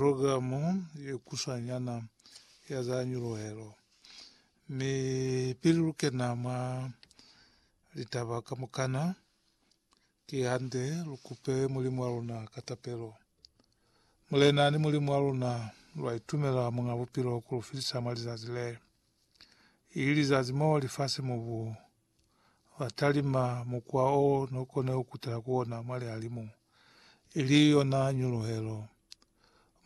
Programo ye kusanyana ya za nyuluhelo, mi pili lu kena mwa litaba kamukana, ki hande lu kupe Mulimu wa luna ka tapelo. Mulena ni Mulimu wa luna, lwa itumela Muñ'a Bupilo ku lu filisa mwa lizazi le, ili lizazi mo lifasi-mubu ba talima mukwa o no kone ku kutela ku ona mwa lihalimu, ili yona nyuluhelo.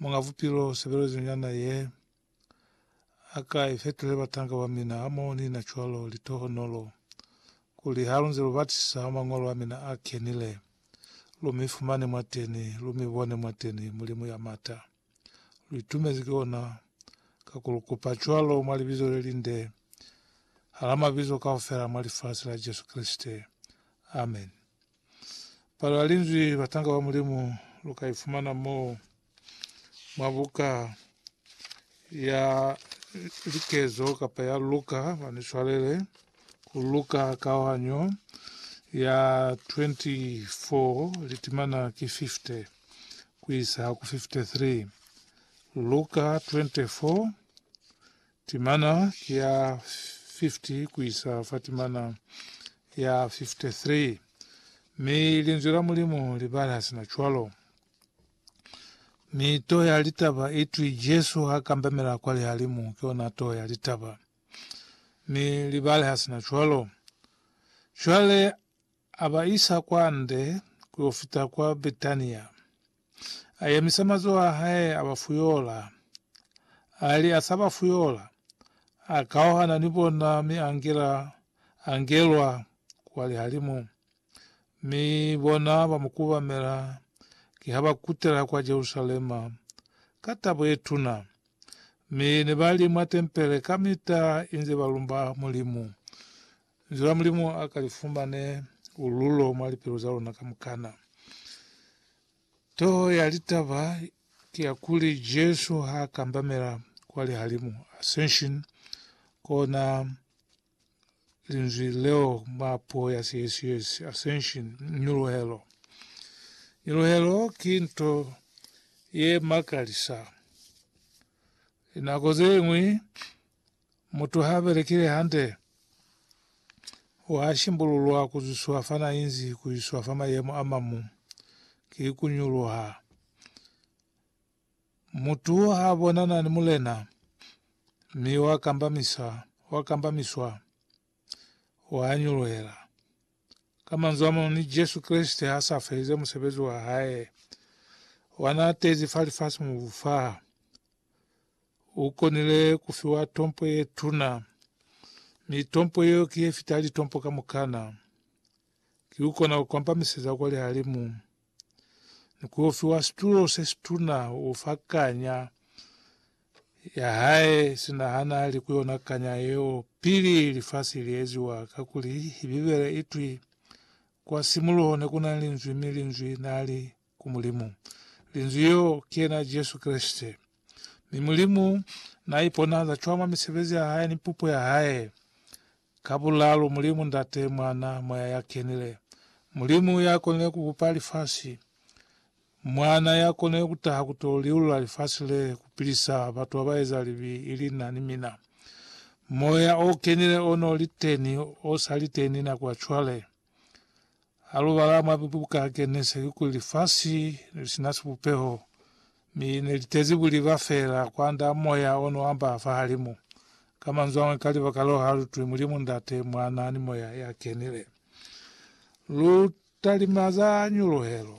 Muñ'a Bupilo sebelezo nyana ye, a ka i fetile batanga ba mina hamoho ni na cwalo litohonolo, kuli ha lu nze lu batisisa mwa Ñolo a mina a Kenile, lu mi fumane mwateni, lu mi bone mwateni Mulimu ya mata. lu itumezi ki ona, ka ku lu kupa cwalo mwa libizo le linde, hala mabizo kaufela mwa lifasi la Jesu Kreste. Amen. Palo ya Linzwi Batanga ba Mulimu lu ka ifumana mo mwa buka ya likezo kapa ya Luka, ba ni swalele, ku Luka kaohanyo ya 24 litimana ki 50. ku isa ku 53, Luka 24, timana ki ya 50 ku isa fa timana ya 53, mi Linzwi la Mulimu li bala sina cwalo. Mi toho ya litaba i twi Jesu ha kambamela kwa lihalimu ki yona toho ya litaba. Mi li baleha sina cwalo. Cwale A ba isa kwande ku yo fita kwa Betania. A yemisa mazoho a hae, a ba fuyola. A li a sa ba fuyola, a kauhana ni bona mi a ngela a ngelwa kwa lihalimu. Mi bona ba mu kubamela ki ha ba kutela kwa Jerusalema ka tabo ye tuna. Mi ne ba li mwa tempele kamita inze ba lumba Mulimu. Linzwi la Mulimu a ka li fumane ululo mwa lipilu za luna kamukana. Toho ya litaba ki ya kuli Jesu ha kambamela kwa lihalimu, ascension, kona linzwi leo mwa puo ya Siesiesi, ascension, nyuluhelo. Nyuluhelo ki nto ye makalisa. Linako ze ñwi, Mutu ha belekile hande, wa shimbululwa ku zwiswa fa na inzi ku iswa fa mayemo a mamu, ki ku nyuluha. Mutu ha bonana ni Mulena, mi wa kambamisa, wa kambamiswa, wa nyuluhela. Ka manzwi a mañwi, ni Jesu Kreste ha sa felize musebezi wa hae wa na tezi fa lifasi-mubu fa, U konile ku fiwa tompo ye tuna, mi tompo yeo ki ye fita litompo kamukana. Ki u kona ku kwambamiseza kwa lihalimu, ni ku yo fiwa situlo se situna u fa kanya ya hae, sina ha na li ku yona kanya yeo pili lifasi li eziwa. Kakuli Bibele i twi, Kwa simuluho ne ku na Linzwi, mi Linzwi na li ku Mulimu. Linzwi yeo ki yena Jesu Kreste. Mi Mulimu n'a iponahaza cwañi mwa misebezi ya hae ni pupo ya hae? Ka bulaalu, Mulimu, Ndate, Mwana, Moya ya Kenile. Mulimu ya konile ku bupa lifasi. Mwana ya konile ku taha ku t'o liulula lifasi le, ku pilisa batu ba ba eza libi, ili na ni mina. Moya o Kenile o n'o li teni, o sa li teni nako ya cwale. Halubala mwa buka Genesisi kuli lifasi nelisina sibupeho, mi nelitezi buliba feela kwand'a moya onoamba fahalimu. Ka manzwi amañwi, ka libaka leo halutwi Mulimu Ndate, Mwana, ni Moya yakenile. Lutalimaza nyuluhelo.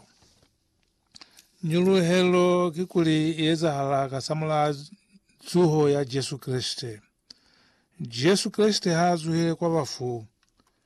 Nyuluhelo kikuli iezahala kasamulaha zuho ya Jesu Kreste. Jesu Kreste haazuhile kwa bafu.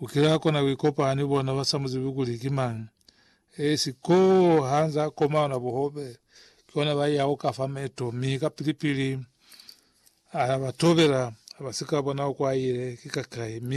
U kile a kona ku ikopanya ni bona ba sa mu zibi kuli ki mañi. Esi koo ha nze a koma yona buhobe, ki hona ba yaho ka fa meto, mi kapili-pili a ba tobela, ha ba si ka bona kwa a ile, ki ka kai, mi